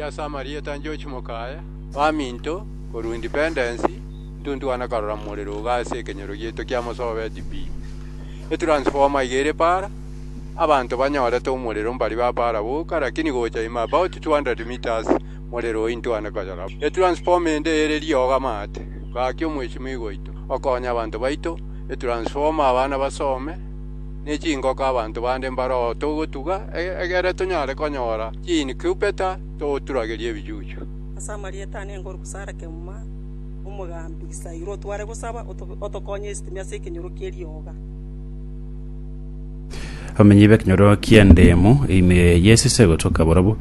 ase amarieta a George Mokaya, baminto, korwa Independence, ntuntuana karora morero iga ase ekenyoro gieto kia Mosobeti pi. Etransformer iga ere para, abanto banyorete omorero mbari ba para boka, lakini gocha ime about 200 metres morero oyio intwane koyora. Etransformer ende ere riogo amaate. Gaki omweshimiwa oito, okonye abanto baito, etransformer abana basome. ne chingoko abanto bande mbaroo togotuga, egere tonyare konyora chiinkubeta toturagerie ebichuchu. Ase amarieta ane Engoruku Sara Kemuma, omogambi Isairo, tware gosaba otokonye esitimi ase ekenyoro ki'erioga. Abamenyi b'ekenyoro ki'endemu ime y'esese gotoka borobu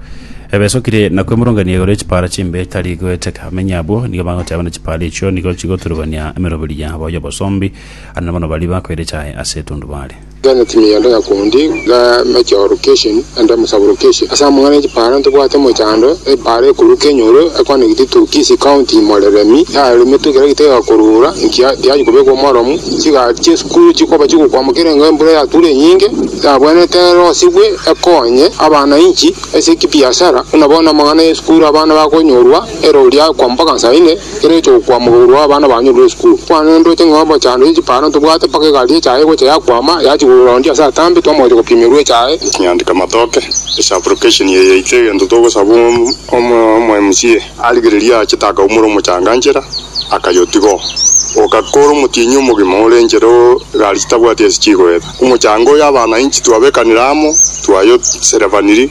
ebesokire na kwemurungania igoro y'echipara chimbe etari goeteka. Abamenyi abwo nigo bagoteba na chipara echio nigo chigoturugania emeroberi yabo y'obosombi Aria nabono baria bakoire chaye ase etundubaare. Genda time ya Ndega County ga Meteo Location and Sub-Location ase amang'ana ya chipaara ntobwate mochando epaara ekoruka enyoro ekonegiti to Kisii County moreremi yaremetwe kera gitaiga korura nkiya tiyachi kobekwa omoromu chigari chiesukuru chikoba chigokwama kera engo embura yatura enyinge yabwenerete erosibwe ekonye abanainchi ase kibiasara buna bono amang'ana ya esukuru abana bakonyorwa Ero riakwa mpaka saa ine, kera echokwa mogourwa abana banyorire esukuru. Kwane ndoche ng'a obochando ye chiparo ntobwate mpaka egari y'echae egocha yakwama, yachigurura onde ase atambe, twamoetia gopimerwa echae. Nyandika matoke ase application eye yaito egento togosaba omo MCA. Arigereria aachete akaumora omochanga nchera akayotiga oo. Ogakora omotienyi omogima ore nchera oo egari chitabwati ase chigoeta. Omochanga oyo abanainchi twabekanire amo twayoserevaniri.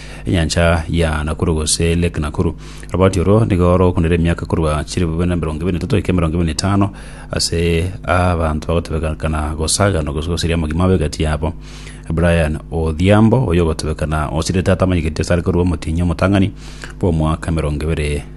enyancha ya Nakuru gose Lake Nakuru. Oroboti oro nigo rogokundera emiaka korwa chire bobe na emerongo ebere na etato goika emerongo ebere na etano ase abanto bagotebekana gosagana gose gosiria amagima abe egati yabo. Brian Odhiambo, oyo ogotebekana osirete atamanyeketi asare korwa omotienyi omotang'ani bw'omwaka emerongo ebere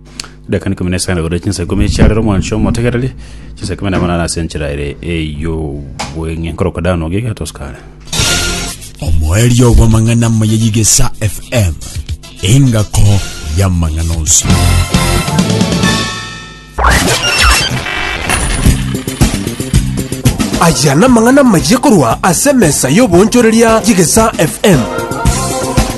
Edakika ikomi na isano igoro chinsa ikomi chia rero mwancho motegereri chinsa ikomi na munana ase enchera ere ey'obweng'e nkoroka dano giga tosikare omoerio bw'amang'ana amaya y'igesa fm engako y'amang'ana onsi aya namang'ana maye korwa ase emesa y'obonchoreria y'igesa fm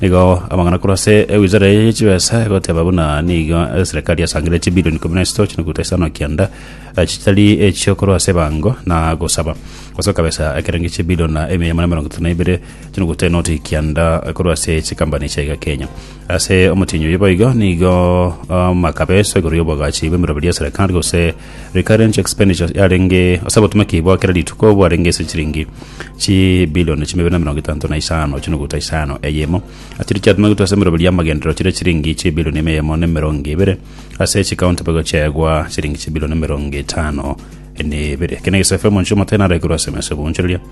Nigo amang'ana korwa ase ewizara eye ye chibesa egoteba buna nigo eserekari yasangire chibilioni ikomi na isatu chinukuta isano kianda eh, chitari echio korwa ase ebango na gosaba gosoka besa ekerengo chibilioni na emia magana mirongo etato na ibere chinukuta enoti kianda eh, korwa ase chikambani chia iga Kenya ase omotienyi oyo boigo nigo ah, makabeso igoro y'obogachi bw'emeroberi ya serekari gose Recurrent expenditure yarenge ase obotomeki bwa kera rituko bwarenge ase chiringi chibilioni chimabere na emerongo etanto na isano chinuguta isano eyemo. Achiria chiatomegwete ase emeroberio y'amagenderero chire chiringi chibilioni ime eyemo na emerongo ebere, ase chikaunti bagochiegwa chiringi chibilioni emerongo etano n'ebere. Eke negesafo emonchire omote naraikirwe ase emesegunchereria.